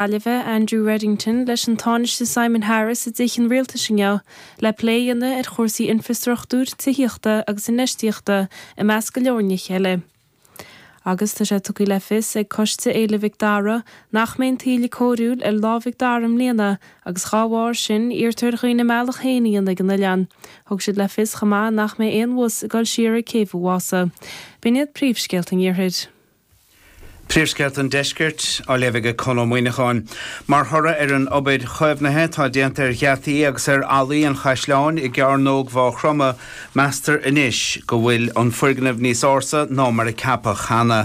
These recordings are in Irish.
Gaillimhe, Andrew Reddington, leis an Tánaiste Simon Harris i dTithe an Rialtais inniu le plé a dhéanamh ar chúrsaí infreastruchtúir, tithíochta agus infheistíochta, i measc go leor nithe eile. Agus tá sé tugtha le fios ag Coiste Fhéile Mhic Dara nach mbeidh an taoille cóiriúil ar Lá Mhic Dara i mbliana agus dá bharr sin, iarrtar ar dhaoine a mbealach féin a dhéanamh go dtí an oileán. Thug siad le fios chomh maith nach mbeidh aon bhus ag dul siar ag Céibh Mhaírois. B'in iad príomhscéalta an iarthair. Príomhscéalta an Deiscirt, á léamh aige Conn Ó Muíneacháin. Mar thoradh ar an obair chaomhnaithe atá déanta ar gheataí agus ar fhallaí an chaisleáin i gCeárnóg Mhaigh Chromtha, meastar anois go bhfuil an foirgneamh níos ársa ná mar a ceapadh cheana.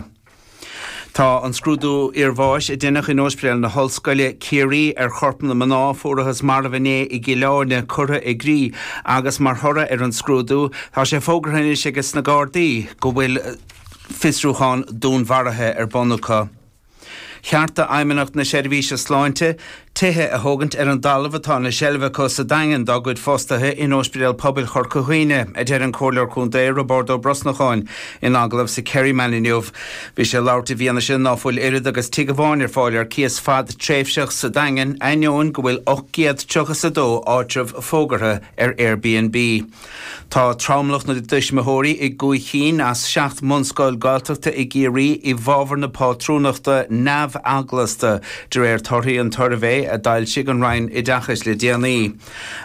Tá an scrúdú iarbháis a deineadh in Ospidéal na hOllscoile, Ciarraí, ar chorp na mná a fuarthas marbh inné i gCill Áirne curtha i gcrích agus mar thoradh ar an scrúdú tá sé fógartha anois ages na Gardaí go bhfuil fiosrúchán dúnmharaithe ar bun acu. Ceart do Fheidhmeannacht na Seirbhíse Sláinte tithe a thógaint ar an dtalamh atá ina seilbh acu sa Daingean dá gcuid fostaithe in Ospidéal Pobail Chorca Dhuibhne, a deir an Comhairleoir Contae Roibeárd Ó Brosnacháin in agallamh sa Kerryman inniu. Bhí sé ag labhairt i bhfianaise ná fuil oiread agus tigh amháin ar fáil ar cíos fadtréimhseach sa Daingean ainneoin go bhfuil 800 triocha 's a dó áitreabh fógartha ar Airbnb. Tá tromlach na dtuismitheoirí i gcúig chinn as seacht mbunscoil Gaeltachta i gCiarraí i bhfábhar na pátrúnachta neamheaglasta, de réir torthaí an tsuirbhé a d'fhoilsigh an Roinn Oideachais le déanaí.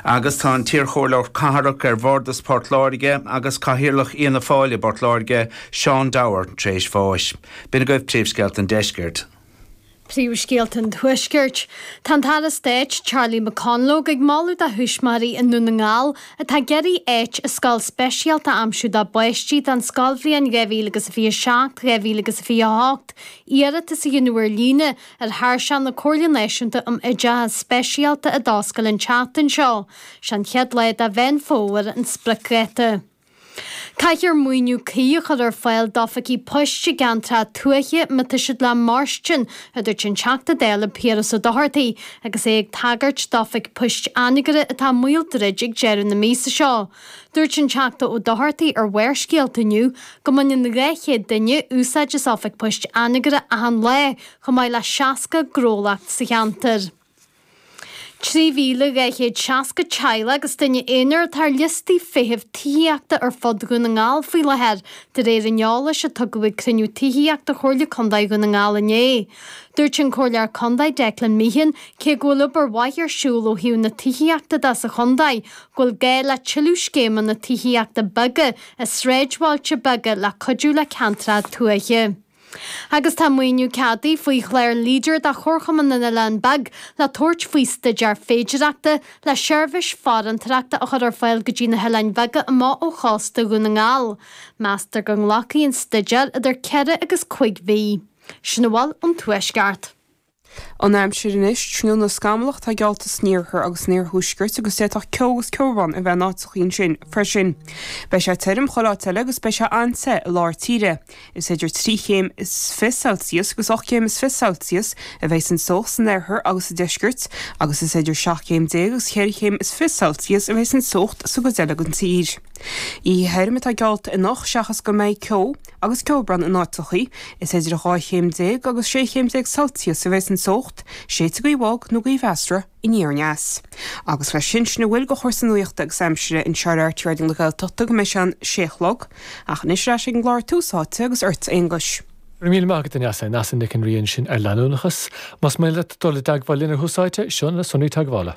Agus tá an t-iarchomhairleoir cathrach ar Bhardas Port Láirge agus cathaoirleach Fhianna Fáil i bPort Láirge, Seán Dower, tréis bháis. B'in agaibh príomhscéalta an deiscirt. Príomhscéalta an Tuaiscirt. Tá an tAire Stáit Charlie McConalogue ag moladh do thuismitheoirí i nDún na nGall atá ag iarraidh áit i scoil speisialta a aimsiú dá bpáistí don scoilbhliain 2027, 2028 iarratas a dhéanamh ar líne ar thairseach na Comhairle Náisiúnta um Oideachas Speisialta a d'oscail an tseachtain seo. Is é an chéad lá de Mheán Fómhair an spriocdháta. Caithfear maoiniú cuí a chur ar fáil d'oifigí poist i gceantracha tuaithe má tá siad le mairstin, a dúirt an Teachta Dála Piaras Ó Dochartaí agus é ag tagairt d'oifig poist Anagaire atá i mbaol druid ag deireadh na míosa seo. Dúirt an Teachta Ó Dochartaí ar Bharrscéalta inniu go mbaineann 200 duine úsáid as Oifig Poist Anagaire achan lá, chomh maith le 60 gnólacht sa cheantar. 3,260 teaghlach agus duine aonair atá ar liostaí feithimh tithíochta ar fud Dhún na nGall faoi láthair, de réir an eolais a tugadh ag cruinniú tithíochta Chomhairle Contae Dhún na nGall inné. Dúirt an Comhairleoir Contae Declan Meehan cé go bhfuil obair mhaith ar siúl ó thaobh na tithíochta de sa chontae, go bhfuil gá le tuilleadh scéimeanna tithíochta beaga i sráidbhailte beaga le cuidiú le ceantracha tuaithe. Agus tá maoiniú ceadaithe faoi chlár leader do Chomharchumann na nOileán Beag le tabhairt faoi staidéar féidireachta le seirbhís farantóireachta a chur ar fáil go dtí na hoileáin bheaga amuigh ó chósta Dhún na nGall. Meastar go nglacfaidh an staidéar idir ceithre agus cúig mhí. Sin a bhfuil ón Tuaisceart. An aimsir anois, tráthnóna scamallach atá geallta san iarthar agus san iarthuaisceart agus d'fhéadfadh ceo agus ceobhrán a bheith in áiteachaí ansin freisin. Beidh sé tirim chuile áit eile agus beidh sé an-te i lár tíre. Is idir trí chéim is fiche Celsius agus ocht gcéim is fiche Celsius a bheas an teocht san oirthear agus sa deisceart agus is idir seacht gcéim déag agus ceithre chéim is fiche Celsius a bheas an teocht sa gcuid eile den tír. Oíche thirim atá geallta anocht seachas go mbeidh ceo Agus ceobhrán in áiteachaí, is idir 12 chéim agus 16 chéim Celsius a bheas an teocht, séidfidh gaoth bhog nó gaoth mheasartha aniar aneas. Agus leis sin, sin a bhfuil de chúrsaí nuachta agus aimsire anseo ar RTÉ Raidió na Gaeltachta go mbeidh sé an sé a chlog, ach anois ar ais ag an gclár Tús Áite agus ort, a Aonghuis. Go raibh míle maith agat, a Neasa, Neasa Nic an Rí ansin ar Leanúnachas. Más mian leat dul i dteagmháil linn ar Thús Áite, seo na sonraí teagmhála.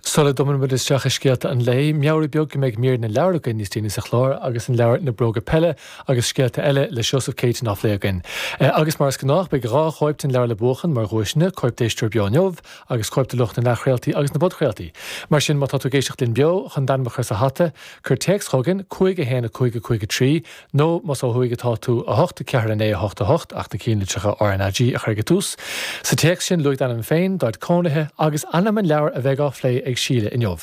Sula dtumann muid isteach i scéalta an lae, meabhrú beag go mbeidh mír na leabhar againn níos déanaí sa chlár agus an leabhar Na Bróga Peile agus Scéalta Eile le Seosamh Céitinn á phlé againn. Agus mar is gnách, beidh dhá chóip den leabhar le buachan mar dhuaiseanna, cóip d'éisteoir beo inniu agus cóip do lucht na n-athchraoltaí agus na bpodchraoltaí. Mar sin, má tá tú ag éisteacht linn beo, chun d'ainm a chur sa hata, cuir téacs chugainn, 51553, Nó, más ó thuaidh atá tú, 8, 4, 9, 8, 8, ach na cianlitreacha RnaG a chur ag an tús. Sa téacs sin, luaigh d'ainm féin, d'áit cónaithe, agus ainm an leabhair a bheidh á phlé ag Síle inniu.